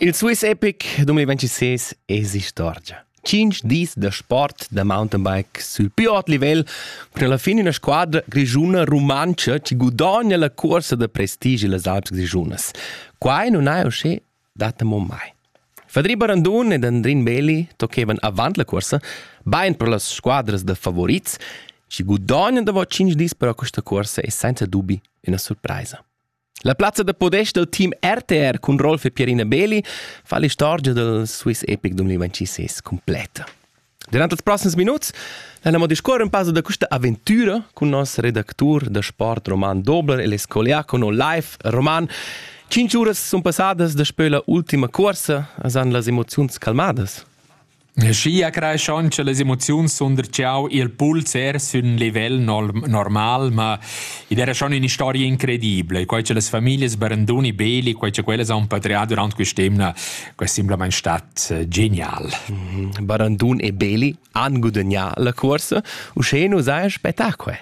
Il Swiss Epic 2026 es istorgia. 5 dis da sport da mountainbike sul più hot livel per la fin una squadra grigiuna rumantscha ci gudogna la corsa da prestige las Alps Grischunas. Quai non ha uscì data mo mai. Fadri Barandun ed Andrin Belli tocchevan avant la corsa, bain per las squadras da favorits, ci gudogna dopo 5 dis per questa corsa e senza dubi una surpresa. La plazza da podest dal team RTR cun Rolf e Pierina Beli fa l'istorgia dal Swiss Epic 2026 completa. Durant ils proxims minuts andiamo a discorrere un passo da questa avventura con il nostro redattore da sport Roman Dobler e l'escoliacono live Roman. Cinque ore sono passate daspö l'ultima corsa, san las emozioni calmadas? Aschia creischauncha las emoziuns sunder tgau il puls er sün livel normal, ma id era schon ün'historia incredibla, quai cha las famiglias Baranduni, Beli, quai cha quellas han patrià durant quest'emna, quai es simplamaing stat eh, genial. Mhm. Barandun e Beli han gudagnà la cuorsa. Uschè nu saja spettacol.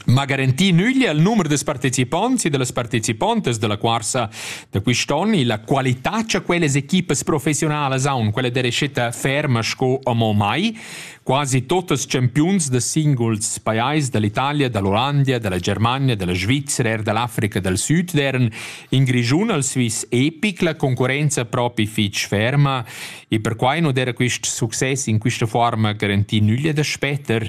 Ma garantì nüglia il numer da partecipants e dallas partecipantas dalla cuorsa da quist'on e la qualità cha quellas equipas professionalas haun, quella dera scetta ferma sco amo mai. Quasi totes champiuns da singuls pajais dall'Italia, dall'Olanda, dalla Germania, dalla Svizzera er dall'Africa dal Sud deren in Grischun al Swiss epic la concorrenza propi fich ferma e perquai no dera quist success in quista forma garantì nüglia da spetter.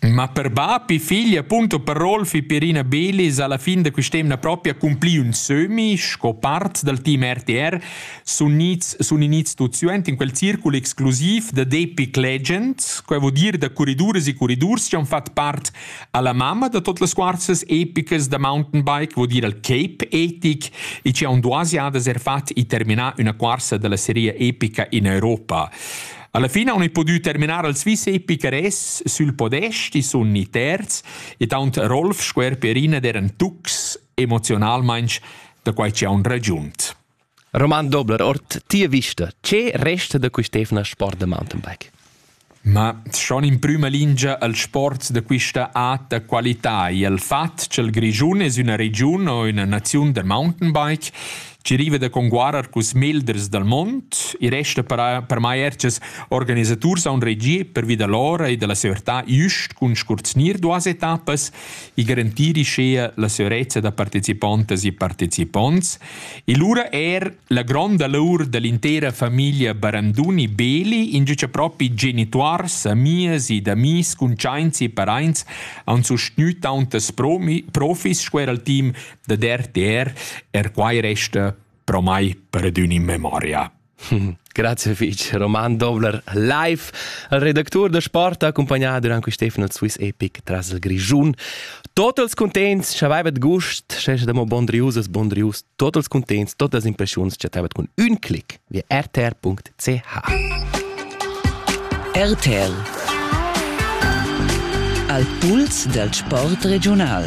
Ma per bap e figl appunto per Rolf e Perina Belis alla fin da quest'emna proprio accumpli ün sömi sco part dal team RTR sun inits sun inits tuot suent in quel circul exclusiv da Depic Legends, que vo dir da corriduras e corridurs chi han fat part alla mamma da tot las cuorzas epicas da mountain bike, vo dir al Cape Etic e chi han duos jadas er fat e terminà üna cuorsa dalla seria epica in Europa. Alla fine on pudü terminar al Swiss Epicares sül podest, i sun i terz, ed aunt Rolf sco er Perina d'eran tucs emozionalmainch da quai chi haun ragiunt. Roman Dobler-Ort, tia vista, che resta da quist'evna sport da mountainbike? Ma schon in prüma lingia al sport da quista ata qualità e al fat ch'el Grischun es üna regiun o üna naziun da mountainbike che riva da conguarer cus melders dal mond e resta per, per mai ertgas organisaturs aun regier per vida lora e da la severtà just cun scurznir duas etappas e garantiri schea la severezza da participantas e participonts e lura er la gronda laur dell'intera famiglia Baranduni Beli in giuce propi genituars, amias e d'amis cuntschaints e paraints aun sustgnü tauntas profis sco er al team da der der er quai resta pro mai per adün in memoria. Grazie fich. Roman Dobler live. Il redactur da sport ha accompagnato durant quest'efno il Swiss Epic tras il Grischun. Totals contents c'avevet gust, sche da mo bondriusas bondrius, totals contents, totas impressiuns chatevet cun ün clic via rtr.ch. RTL Al puls del sport regional.